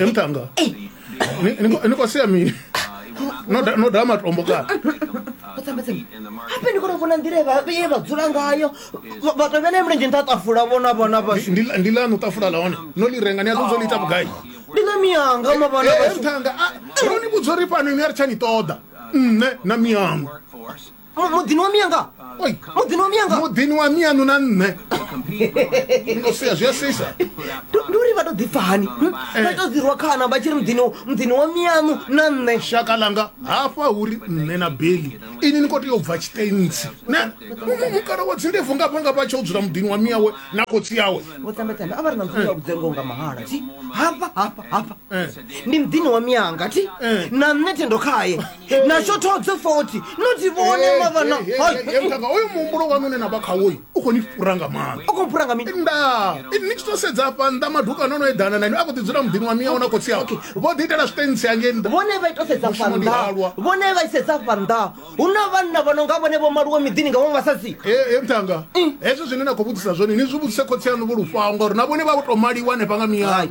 emtanga nikosia mini noda matombo kana hape ndi kona vona nḓila ye vha dzula ngayo vhathu vhene mulenzhe nṱha tafula vhona vhona vhashu ndi lanu tafula la hone no li renga ni a ṱodzo liita vhugai ndi na miyanga mavhana vhashu ntanga ro ni vhudza uri fhano ni a ri tsha ni ṱoḓa nṋe na miyango Mu- muḓini wa miya nga Oi. muḓini wa miya nga muḓini wa mianu na nṋe Ndo sia, zwi a sisa Ndi- ndi uri vha to ḓipfa hani hm? vha to ḓirwa khana vha tshi ri muḓini muḓini wa miyaṋu na nṋe shaka langa hafha uri nṋe na beli ini ni khou tea u bva tshitentsi ne Mu- mukala wa dzindebvu ngafha ngafha a tshi o dzula muḓini wa miyawe na khotsi yawe vho tambetambe a vha ri na mfumo wa vhudzengo nga mahala thi hafha hafha hafha Eh. ndi muḓini wa miyanga thi Eh. na nṋe thendo khaye natsho thodze foti noti vhone mavana mutanga oyo muhumbulo wanu une na vha khawoyi u khou ni fhura nga maanḓa u khou fhura nga mini nda ini ni tshi to sedza afha nnḓa madukano ono eḓana na ine a khou ḓi dzula muḓini wa miyawo na khotsi awo vho ḓi itela zwiṱentsi hangei nnḓa vhone vha ito sedza fa nnḓa vhone vha isedza fa nnḓa hu na vhanna vha no nga vhone vho maluwe miḓini nga vhaṅwe vhasadzi e mutanga hezwo zwine na khou vhudzisa zwone ni zwi vhudzise khotsi aṋu vho lufhaho ngauri na vhone vha vho to maliwa hanefha nga miyayo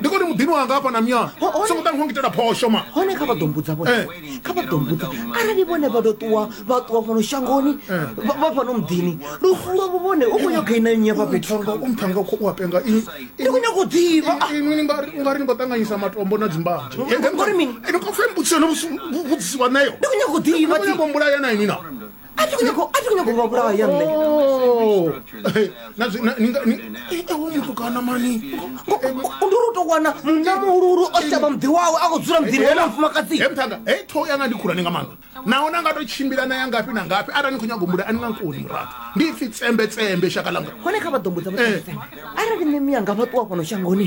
ndi koni muḓini wanga hafha na myana songo ṱa ni kho ngitela phosho ma hone kha vha ḓo mbudza vhone eh. kha vha ḓo mbudza arali vhone vha ḓo ṱuwa vha ṱuwa fhano shangoni eh. vha fhano muḓini lufu lwavho vhone u khou nyaga ina nnyi hafha fhethu umphanga u khou apenga ndi khou nyaga u ḓivha ah. inwi ungari ni khou ṱanganyisa matombo na dzimbanzhe ngori mini ene khou fhe mbudziso no vhudzisiwa nayo ndi khou nyaga u ḓivha ndi khou nyaga u mbulaya na inwi na a thi khou nyanga- a thi khou nyanga u vha vhulaya nṋe Eh, na zwi- na- ni nga- ni- eh, eh, hoyu mutukana mani ndi uri u tou wana munna muhuluhulu o shavha muḓi wawe a khou dzula muḓini wa mufumakadzi he mthanga he ṱhoho yanga ndi khulwane nga maanḓa naho na nga to tshimbila na ya ngafhi na ngafhi arali ni khou nyago mbula a ni nga nkoni muraḓo ndi ipfi tsembetsembe shaka langa hone kha vha ḓo mbudza Eh. vhae arali nṋe miyanga vha ṱuwa fhano shangoni